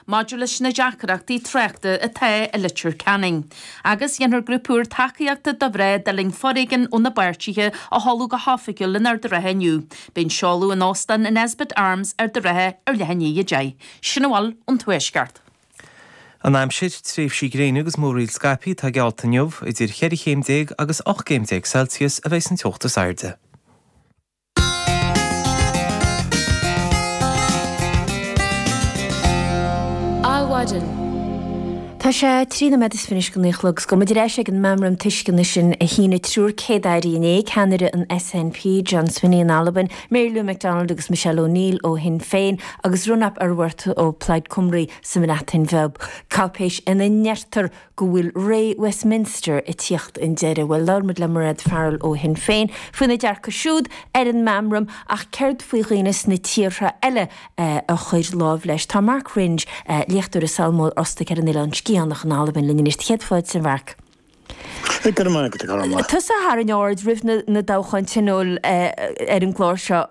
maidir leis na deacrachtaí tráchta atá i Leitir Ceanainn. Agus déanfar grúpa úr tacaíochta do mhná a d'fhulaing foréigean óna bpáirtithe a sheoladh go hoifigiúil in Ard an Rátha inniu. Beidh an seoladh in Óstán an Nesbitt Arms, Ard an Rátha, ar leath i ndiaidh 10:00. Sin a bhfuil ón Tuaisceart. An aimsir, Tréimhsí gréine agus múraíl scaipthe atá geallta inniu, idir cheithre chéim déag agus ocht gcéim déag Celsius a bheidh an teocht is airde. Adhmhaidin. Tá sé trí nóiméad is fiche chun a naoi a chlog. Is go mbaidh muid ar ais ag an Meamram Tuisceana sin a shínigh triúr céad-aire inné, ceannaire an SNP, John Swinney in Albain, Mary Lou McDonald agus Michelle O'Neill ó Shinn Féin, agus Rhun ap Iorwerth ó Plaid Cymru sa mBreatain Bheag, cáipéis ina ndeirtear go bhfuil ré Westminster ag tíocht chun deiridh. Bhuel, labhair muid le Mairéad Farrell ó Shinn Féin faoina ndearcadh siúd ar an meamram ach céard faoi dhaoine sna tíortha eile a chuir lámh leis? Tá Mark Wringe, léachtóir i Sabhal Mòr Ostaig ar an Oileán Sgitheanach in Albain linn anois. Céad fáilte, a Mhark. Tusa a tharraing aird roimh na toghcháin Tionóil ar an gclár seo.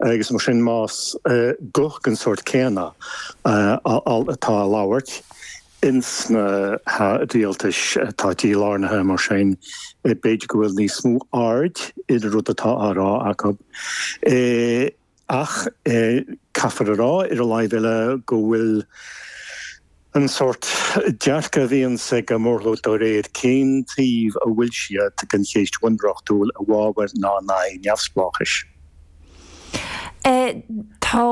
agus mar sin más guth den sórt céanna atá á labhairt ins na rialtais atá dílárnaithe, mar sin b'fhéidir go bhfuil níos mó aird ar an rud atá á rá acu. Ach caithfear a rá, ar an láimh eile, go bhfuil. An sórt dearcadh a bhíonns agat go mór mór de réir cén taobh a bhfuil tú den chéist bhunreachtúil i bhfabhar ná in aghaidh neamhspleáchais. Tá,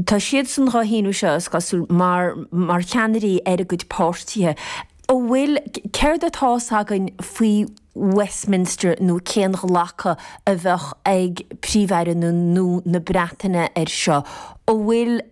tá siadsan dhá shíniú seo, is cosúil, mar mar cheannairí ar a gcuid páirtithe. An bhfuil, céard atá a fhios againn faoi Westminster nó cén glacadh a bheadh ag Príomh-Aire na nó na Breataine ar seo? An bhfuil.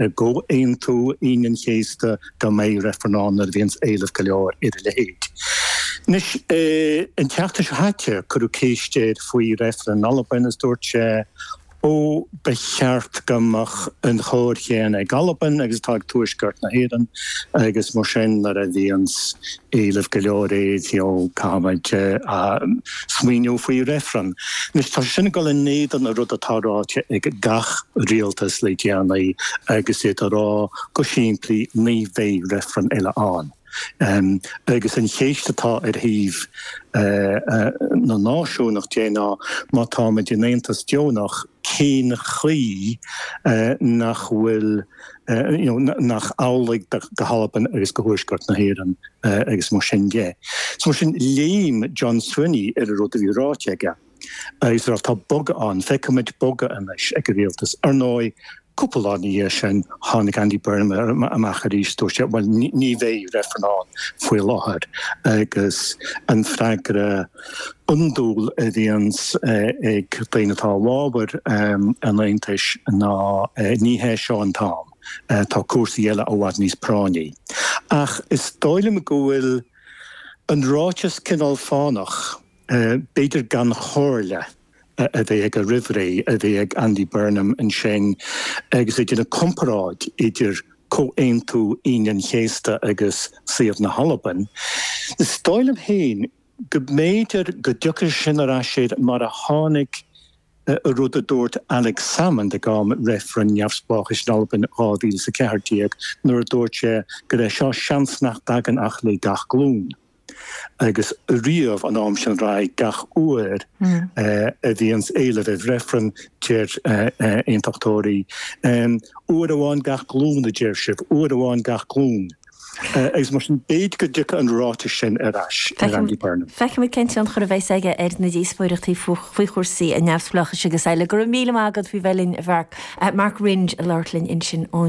I gComhaontú Aoine an Chéasta go mbeadh reifreann ann nuair a bhíonns éileamh go leor ar a leithéid. Anois, an tseachtain seo chaite, cuireadh ceist air faoi reifreann in Albain agus dúirt sé, Ó, ba cheart go mbeadh an chóir chéanna ag Albain agus atá ag Tuaisceart na hÉireann agus mar sin nuair a bhíonns Éileamh go leor air, you know, caithfidh muid smaoiniú faoi reifreann. Anois, tá sé sin ag dul in éadan an rud atá ráite ag gach rialtas le déanaí agus iad ag rá go simplí ní bheidh reifreann eile ann. Agus an cheist atá ar thaobh na náisiúnach ná, má tá muid in aontas deonach, cén chaoi nach bhfuil, nach amhlaidh go hAlbain agus go Tuaisceart na hÉireann agus mar sin de. So mar sin, léim John Swinney ar an rud a bhí ráite aige is a rá, tá bogadh ann, feicimid bogadh anois ag an rialtas. Ar ndóigh, cúpla lá ina dhiaidh sin, tháinig Andy Burnham amach arís, dúirt sé, bhuel, ní bheidh reifreann ann faoi láthair agus an freagra, iondúil a bhíonns ag daoine atá i bhfábhar an Aontais ná ní hé seo an t-am, tá cúrsaí eile i bhfad níos práinní. Ach is dóigh liom go bhfuil an ráiteas cineál fánach, b'fhéidir gan chomhairle a bheith aige roimh ré a bhí ag Andy Burnham ansin agus é ag déanamh comparáid idir Comhaontú Aoine an Chéasta agus suíomh na hAlban. Is dóigh liom féin go. go mb'fhéidir go dtiocfadh sin ar ais air mar a tháinig rud a dúirt Alex Salmond ag am reifreann neamhspleáchais in Albain in 2014 nuair a dúirt sé go raibh seo seans nach dtagann ach le gach glúin agus riamh ón am sin ar aghaidh gach uair a bhíonns éileamh ar reifreann deir aontachtóirí uair amháin gach glúin a deir sibh, uair amháin gach glúin. Agus mar sin, b'fhéidir go dtiocfadh an ráiteas sin ar ais ar Andy Burnham. Feicimid cén tionchar a bheas aige ar na díospóireachtaí faoi chúrsaí an neamhspleáchais agus eile. Go raibh míle maith agat faoi bheith linn, a Mhark. Mark Wringe ag labhairt linn ansin ó